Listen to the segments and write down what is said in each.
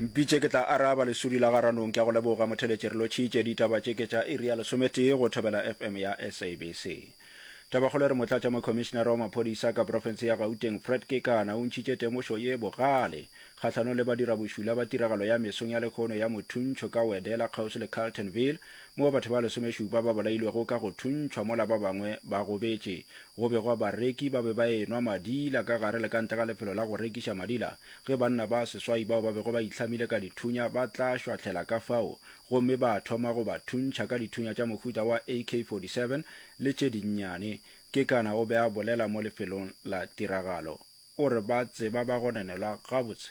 Mpitše ke tla araba lesudi la ga Ranong ke a go leboga Motheletši re lotšhitše ditaba tše ke tša iri ya lesometee go Thobela FM ya SABC. Tabakgolo e re Motlatša Mokhomišinara wa Maphodisa ka Profense ya Gauteng Fred Kekana o ntšhitše temošo ye bogale kgahlanong le badirabošula ba tiragalo ya mesong ya lekhono ya mothuntšho ka Wedela kgauswi le Carltonville moo batho ba lesomešupa ba bolailwego ka go thuntšhwa mola ba bangwe ba gobetše Go be gwa bareki ba be ba enwa madila ka gare le ka ntle ga lefelo la go rekiša madila. Ge banna ba seswai bao ba bego ba itlhamile ka dithunya ba tla šwahlela ka fao gomme ba thoma go ba thuntšha ka dithunya tša mohuta wa AK-47 le tše dinnyane, Kekana o be a bolela mo lefelong la tiragalo. O re ba tseba ba gononelwa gabotse.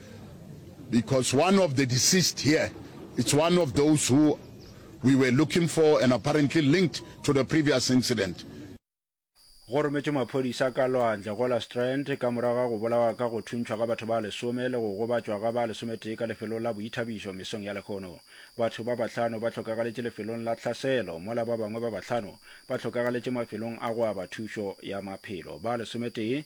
Because one of the deceased here it's one of those who we were looking for and apparently linked to the previous incident. Go rometšwe maphodisa ka lwandle go la Strand ka morago ga go bolawa ka go thuntšhwa ga batho ba lesome le go gobatšwa ga ba lesometee ka lefelong la boithabišo mesong ya lehono. Batho ba bahlano ba hlokagaletše lefelong la tlhaselo mola ba bangwe ba bahlano ba hlokagaletše mafelong a go aba thušo ya maphelo. Ba lesometee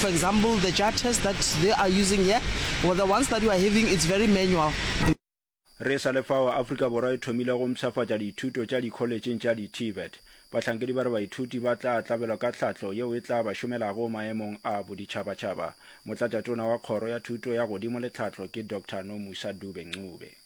For example, the jar test that they are using here, well, the ones that we are having, it's very manual. Re sa le fao, Afrika Borwa e thomile go mpshafatša dithuto tša dikholetšheng tša di-TVET. Bahlankedi ba re baithuti ba tla tlabelwa ka tlhahlo yeo e tla ba šomelago maemong a boditšhabatšhaba. Motlatšatona wa Kgoro ya Thuto ya Godimo le Tlhahlo ke Doctor Nomusa Dube-Ncube.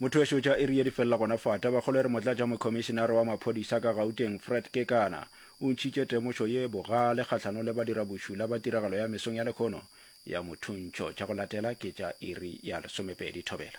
Motho wešo tša Erie di felela gona fa. Tabakgolo e re motlatšamokhomišenare wa maphodisa ka Gauteng, Fred Kekana, o ntšhitše temošo ye bogale kgahlanong le badirabošula ba tiragalo ya mesong ya lekhono ya mothuntšho. Tša go latela ke tša iri ya lesomepedi thobela.